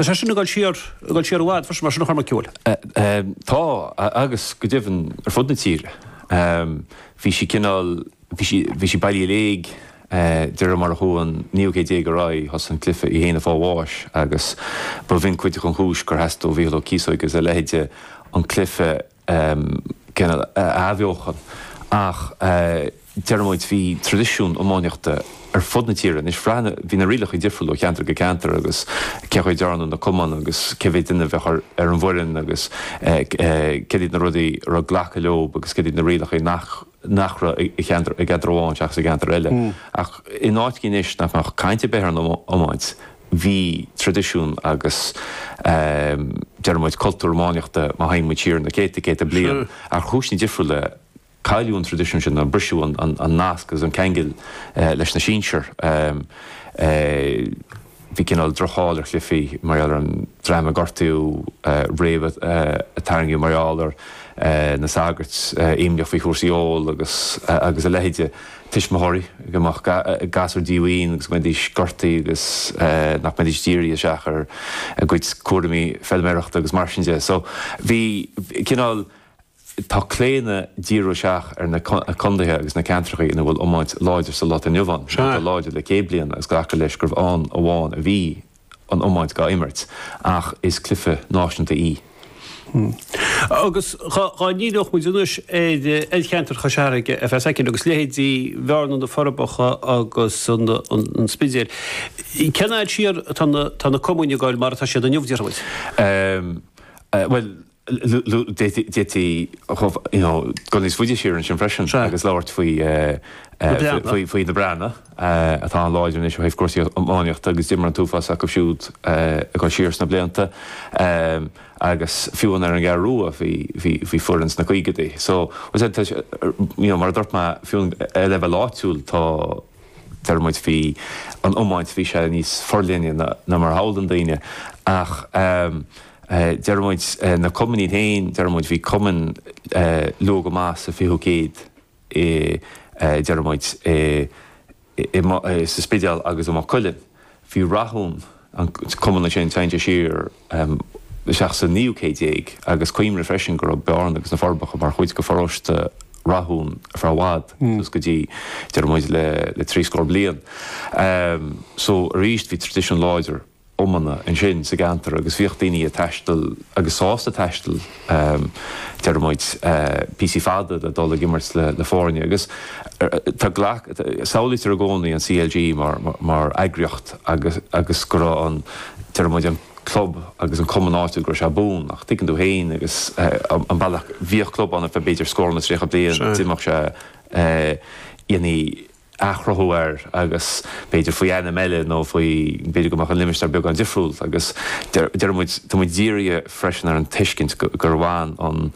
Is é sin ag dul siar, ag dul siar i bhfad freisin mar sin a Chormaic Ceoil. Tá agus go deimhin ar fud na tíre. Bhí sí cineál, bhí sí, bhí sí bailithe i léig de réir mar a chuaigh an naoú céad déag ar aghaidh, thosaigh an cluiche í féin ag fáil bháis agus ba bhin cuid den chúis gur theastaigh ó Mhícheál Ó Cíosóig agus a leithéide an cluiche athbheochan ach deir muid bhí traidisiún iománaíochta ar fud na tíre anois. Bhí na rialacha difriúla ó cheantar go ceantar agus cén chaoi a ndearnadh na cumainn agus cé mhéid duine a bheadh ar an bhfoireann agus céard iad na rudaí a raibh glacadh leo agus céard iad na rialacha nach nach raibh i gceantar i gceantar amháin seachas i gceantar eile ach in áiteachaí anois nach mbeadh caint ar bith ar an iomáint bhí traidisiún agus deir muid cultúr iománaíochta má théann muid siar na céadta céadta bliain ar chúiseanna difriúla cailleadh an traidisiún sin nó briseadh an nasc agus an ceangal leis na sinsir. Bhí cineál droch-cháil ar an gcluife mar gheall ar an dream a gortaíodh roimhe, a tarraingíodh mar gheall ar na sagairt, imníoch faoi chúrsaí óil agus a leithide, tuismitheoirí go mbeadh gasúir díomhaoin agus go mbeidís gortaithe agus nach mbeidís dírithe isteach ar a gcuid cúraimí feilméarachta agus mar sin de. So bhí cineál. Tá claonadh díriú isteach ar na condaetha agus na ceantrachaí ina bhfuil iomáint láidir sa lá atá inniu ann. is atá láidir le céad bliain agus glacadh leis gurbh ann amháin a bhí an iomáint gá imirt ach is cluife náisunta í. Agus dhá ndíreodh muid anois ar cheantar Chois Fharraige a bheas aici agus leithéidí Bhearna, Na Forbacha agus An Spidéal, cén fhad siar atá na cumainn ag goil mar atá siad inniu, déarfaidh muid? Bhuel, d'fhéadfaí chomh, you know, dul níos faide siar ansin freisin agus labhairt faoi na Breathnaigh atá an-láidir anois ó thaobh cúrsaí iománaíochta agus d'imir an t-uafás acu siúd ag dul siar sna blianta agus fiú amháin ar an gCeathrú Rua bhí foireann sna caogaidí so you know mar a dúirt mé fiú ar leibhéal áitiúil tá deir muid bhí an iomáint bhí sé níos forleithne na mar a shamhlaíonn daoine ach ehm Deir muid, na cumainn iad féin, deir muid, bhí cumainn luath go maith sa 20ú céad i, deir muid, i, sa Spidéal agus i Maigh Cuilinn. Bhí Rathún, an cumann ansin, téann sé siar isteach sa naoú céad déag agus cuimhnigh freisin go raibh Bearna agus na Forbacha mar chuid de pharóiste Rathúin ar feadh i bhfad suas go dtí, deir muid, le trí scór bliain. So, arís, bhí traidisiún láidir iomána ansin sa gceantar agus bhíodh daoine ag taisteal agus sásta taisteal deir muid píosaí fada le dul ag imirt le foirne agus tá GLAC, samhlaítear i gcónaí an CLG mar eagraíocht agus go raibh an, deir muid an club agus an cumann áitiúil go raibh sé buan ach tuigeann tú féin agus an bealach, bhíodh club ann ar feadh b'fhéidir scór nó tríocha bliain, d'imeodh sé, dhéanfaí, athchruthú air agus b'fhéidir faoi ainm eile nó faoi, b'fhéidir go mbeadh an limistéar beagán difriúil agus deir muid, tá muid dírithe freisin ar an tuiscint gur bhain an,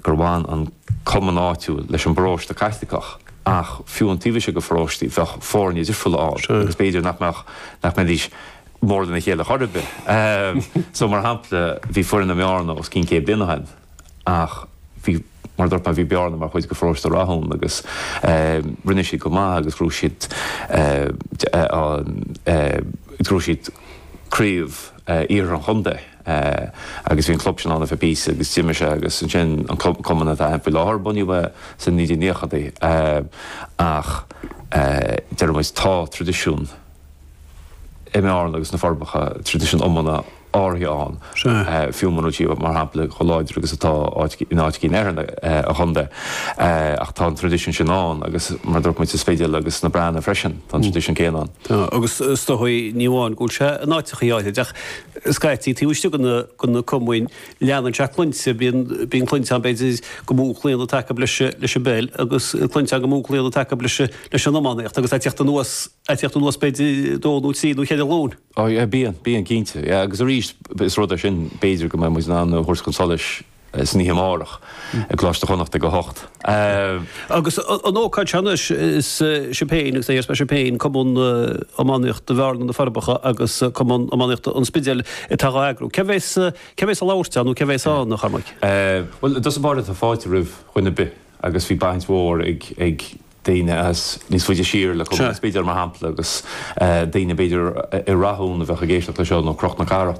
gur bhain an cumann áitiúil leis an bparóiste Caitliceach ach fiú an taobh istigh de pharóistí bheadh foirne difriúla le fáil agus b'fhéidir nach mbeadh, nach mbeidís mór lena chéile chor ar bith. So mar shampla bhí foireann i mBearna os cionn céad bliain ó shin, ach bhí, mar a dúirt mé, bhí Bearna mar chuid de Pharóiste Rathúin agus rinne siad go maith agus ghnóthaigh siad an, ghnóthaigh siad craobh iarthar an chontae agus bhí an club sin ann ar feadh píosa agus d'imigh sé agus ansin an club, cumann atá ann faoi láthair, bunaíodh é sna 1990idí ach deir muid tá traidisiún i mBearna agus sna Forbacha, traidisiún iomána áirithe ann, fiú muna bhfuil siad, mar shampla, chomh láidir agus atá in áiteachaí eile an chontae. Ach tá an traidisiún sin ann agus mar a dúirt muid sa Spidéal agus sna Breathnaigh freisin, tá an traidisiún céanna ann. Agus is dóigh, ní amháin go bhfuil sé in áiteachaí áithrid, ach scaití taobh istigh de na cumainn, leanann sé clainnte, bíonn clainnte ann, b'fhéidir, go mó claonadh atá acu leis an bpeil agus clainnte ann go mó claonadh atá acu leis an iománaíocht agus a' teacht anuas, a' teacht anuas b'fhéidir dó nó trí nó cheithre ghlúin. Oh yeah, bíonn, bíonn cinnte. Yeah, agus arís is rud é sin b'fhéidir go mbeidh muid in ann a thabhairt chun solais san oíche amárach i gColáiste Chonnacht ag a hocht. Agus an ócáid seo anois is sibh féin agus is sibh féin, Cumann Iománaíochta Bhearna-Na Forbacha agus Cumann Iománaíochta An Spidéil atá dhá eagrú. Cé bhéas, cé bhéas a labhairt ann nó cé bhéas ann a Chormaic? Bhuel, i dtús báire tá fáilte roimh chuile dhuine ar bith agus bhí baint mhór ag, ag, daoine as níos faide siar leis, b'fhéidir, mar shampla, agus daoine, b'fhéidir, i Rathún a bheadh ag éisteacht leis seo nó Cnoc na Cathrach nó.